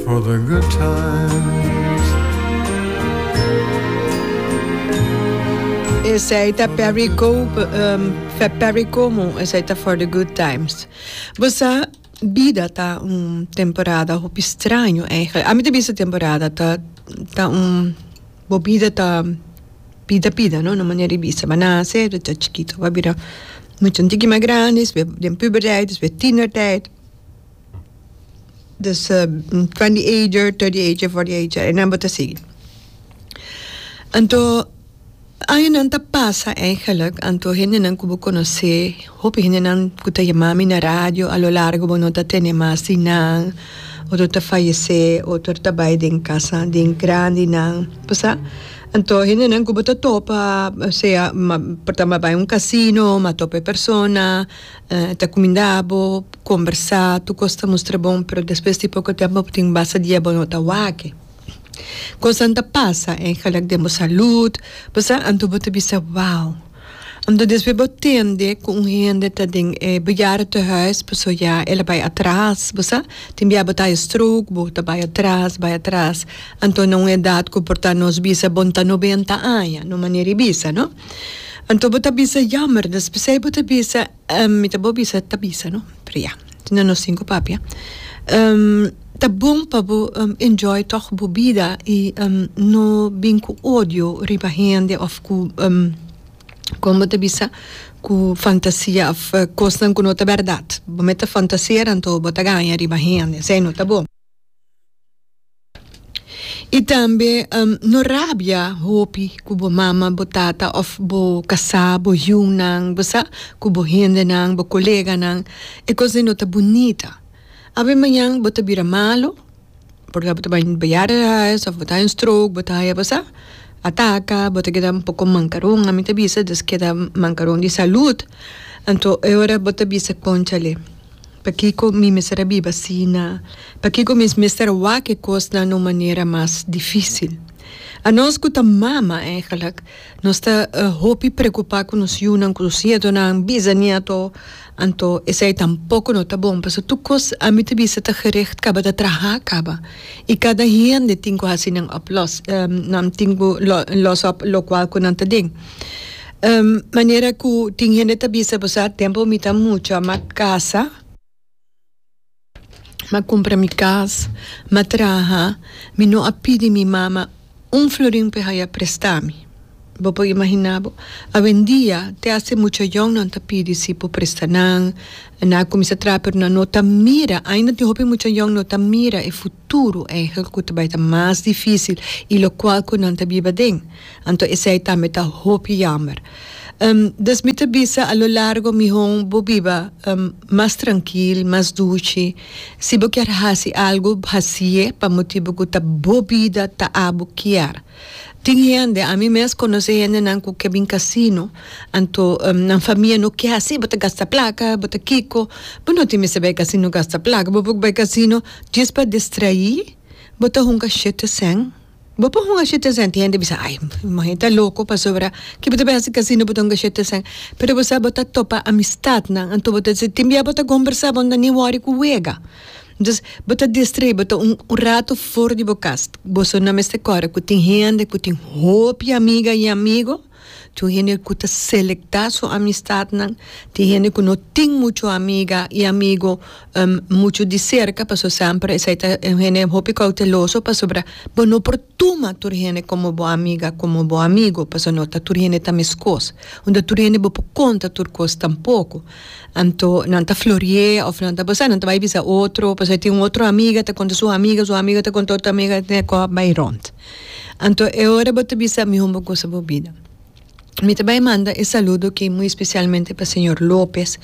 for the good times. Esei ta Perry Cope, um, fe Perry Como, esei ta For the Good Times. Bosa, bida ta un temporada hopi straño eigenlijk. Ami ta bisa temporada ta, ta un, bo bida ta pida pida, no? Na manera di bisa. Bo nase, bo ta chikito, bo a bira mucha un tiki mas grandi, despues den puberteit, despues tienerteit. Des twenty ager, thirty ager, forty ager, e number ta sigui. Anto añanan ta pasa eigenlijk, anto hendenan ku bo konosé, hopi hendenan ku ta yama mi na radio a lo largo bo no ta tene mas di nan, otro ta fayesé, otro ta bai den kasa den grandinan, pasá. Anto hendenan ku bo ta topa, sea por ta bai un casino, ma topa e persona. Ta cuminda bo combersa tur cos ta mustra bon pero despues di poco tempo bo tin basta dia bo no ta wak. Cosnan ta pasa en gelijk den bo salud bo sa anto bo ta bisa wow anto despues bo tende cu un hende ta den e bejaardentehuis pasobra ya el a bay atras bo sa tin bia bo ta haci stroke bo ta bay atras bay atras anto na un edad cu por ta nos bisa bo no ta noventa aña no manera y bisa no. Anto bo ta bisa yammer nos p'esei bo ta bisa mi ta bo bisa ta bisa no pero ya na nos tin ku papia ta bon pa bo enjoy tog bo bida i no bin ku odio riba hende òf ku kon bo ta bisa ku fantasia òf kosnan ku no ta bèrdat bo me ta fantasera anto bo ta gaña riba hende esei no ta bon. I tambe no rabia hopi ku bo mama, bo tata òf bo kasá, bo hiunan, bo sa, ku bo hendenan, bo koleganan. E kos dei no ta bunita. Awe mañan bo ta bira malu por bo ta bai biaha di hais òf bo ta haya un stroke, bo ta haya bo sa, ataka, bo ta keda un poko mankaron. Ami ta bisa, des keda mankaron di salùt. Anto e ora bo ta bisa, kònchale. Pakiko mi mester a biba asina? Pakiko mi mester a wak e kosnan na un manera mas difísil? Anos ku ta mama, eigelik nos ta hopi preokupá ku nos yunan, ku nos nietonan, bizanieto. Anto esei tampoko no ta bon, pasobra tur kos ami ta bisa ta gericht kaba, ta trahá kaba. I kada hende tin ku hasi nan oplos nan tin ku lòs òp lokual ku nan ta den. Um, manera cu tin hende ta bisa pasobra ha tempo mi ta mucha m'a casa, m'a cumpra mi cas, m'a traha, mi no a pidi mi mama un florin p'e haya presta mi. Bo por imagina bo? Awendia te haci mucha yònnan ta pidi si por presta nan, nan a cuminsa traha pero nan no ta mira, ainda tin hopi mucha yòn no ta mira e fu. Tur enhel cu ta bay ta mas dificil y locual cu nan ta biba den. Anto esey tambe ta hopi jammer. Um, dus mi ta bisa a lo largo mihon bo biba, um, mas trankil, mas duchi. Si bo kier haci algo, haci'e pa motibo cu ta bo bida, ta abo kier. Tin hende, ami mes konosé hendenan ku ke bin kasino, anto nan famia no ke hasi, bo ta gasta plaka, bo ta kiko, bo no tin mester bai kasino gasta plaka, bo por bai kasino djes pa distraí, bo ta hunga shete sèn, bo por hunga shete sèn, tin hende bisa ai mohen e ta loko pasobra ke bo ta bai hasi kasino bo ta hunga shete sèn, pero bo sa bo ta topa amistat nan, anto bo ta si tin bia bo ta kombersá bo no ta ni wòri ku wega. Entonces bo ta distrae bo ta un rato for di bo cas boso no mester corre cu tin hende cu tin hopi di amiga y amigo tin hende cu ta selecta su amistadnan tin hende cu no tin mucho amiga y amigo mucho di cerca pasobra semper esey ta e hende hopi cauteloso pasobra bo no por tuma tur hende como bo amiga como bo amigo pasobra no ta tur hende ta mescos y no tur hende bo por conta tur cos tampoco. Anto nan ta florié of nan ta basa nan ta bai bisa otro pasobra tin un otro amiga ta konta su amiga su amiga ta konta otro amiga tin e kòp bai rònt anto e ora bo ta bisa mihó bo gosa bo bida mi ta bai manda e saludo aki muy especialmente pa señor Lopez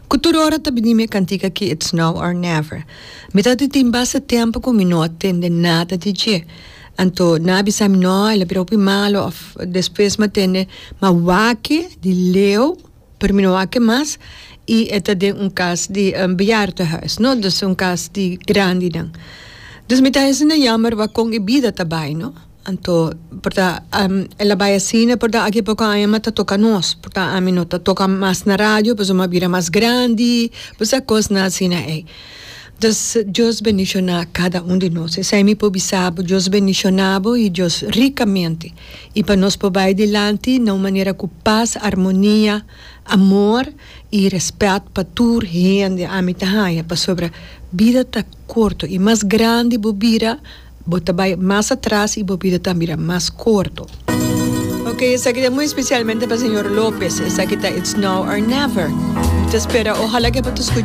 ku tur ora ta bini mi e kantika aki it's now or never mi ta tin basta tempu ku mi no a tende nada di dje anto nan a bisa mi no el a bira hopi malo of despues mi a tende ma wak di leu. Pero mi no a ke mas y e ta den un cas di bejaardenhuis no, dus e un cas di grandinan. Dus mi ta asina jammer wak kon e bida ta bai no. Anto porta el a bai asina porta aki poko aña mi a ta toka nos porta ami no ta toka mas na radio pasobra mi a bira mas grandi pasa kosnan asina ey. Dus Dios bendiciona cada un di nos esey mi por bisa bo Dios bendiciona bo y Dios ricamente I pa nos por bai dilanti na un manera ku pas, armonia, amor i rèspèt pa tur hende, ami ta haña pasobra bida ta korto i mas grandi bo bira, bo ta bai mas atras i bo bida ta bira mas korto. Oke, esaki ta muy spesialmente pa señor Lopez, esaki ta It's Now or Never. Mi ta spera ohala ku e por ta.